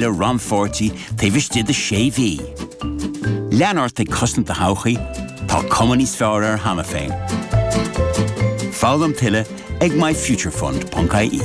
le rannpháirtí taobh istigh de sé mhí. Lean ort ag cosaint do thodhchaí, tá cuma níos fearr air cheana féin. Foghlaim tuilleadh ag myfuturefund.ie.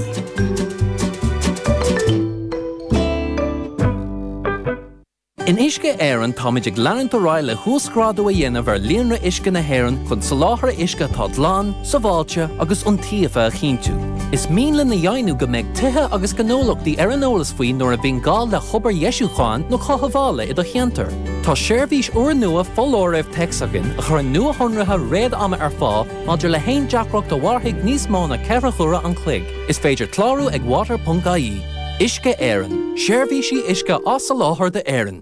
In Uisce Éireann táimid ag leanúint ar aghaidh le huasghrádú a dhéanamh ar líonra uisce na hÉireann chun soláthar uisce atá glan, sábháilte agus iontaofa a chinntiú. Is mian linn a dheimhniú go mbeidh tithe agus gnólachtaí ar an eolas faoi nuair a bhíonn gá le hobair dheisiúcháin nó cothabhála i do cheantar. Tá seirbhís úrnua foláirimh téacs againn a chuireann nuashonruithe réad-ama ar fáil maidir le haon deacracht a mhairfidh níos mó ná ceithre huaire an chloig. Is féidir clárú ag water.ie. Uisce Éireann, seirbhísí uisce á soláthar d'Éirinn.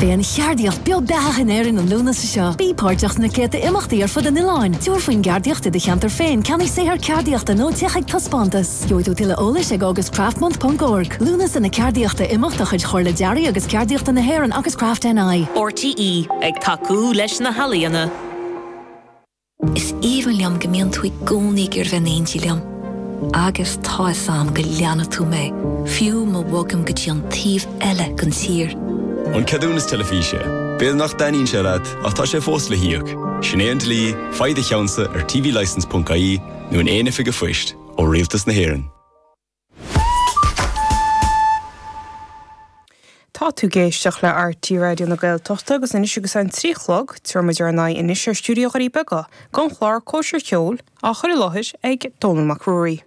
Beidh an cheardaíocht beo beathach in Éirinn an Lúnasa seo. Bí páirteach sna céadta imeachtaí ar fud an oileáin. Tabhair faoin gceardaíocht i do cheantar féin, ceannaigh saothar ceardaíochta nó téigh chuig taispeántas. Gheobhaidh tú tuilleadh eolais ag August Craft Month ponc org. Lúnasa na Ceardaíochta, imeacht de chuid Chomhairle Dearaidh agus Ceardaíochta na hÉireann agus Craft NI. RTÉ ag tacú leis na healaíona. Is aoibhinn liom go mbíonn tú i gcónaí ag iarraidh bheith in éindí liom. Agus tá fhios a'm go leanfaidh tú mé, fiú má bhogaim go dtí an taobh eile den tír. An ceadúnas teilifíse. B'fhéidir nach dtaitníonn sé leat ach tá sé fós le híoc. Sin é an dlí, faigh do cheannsa ar tvlicence.ie nó in aon oifig a' phoist, ó Rialtas na hÉireann. Tá tú ag éisteach le RTÉ Raidió na Gaeltachta agus anois agus é an trí a chlog, tabharfaidh muid ár n-aghaidh anois ar stiúideo Dhoirí Beaga don chlár Cóisir Cheoil á chur i láthair ag Dónall Mac Ruairí.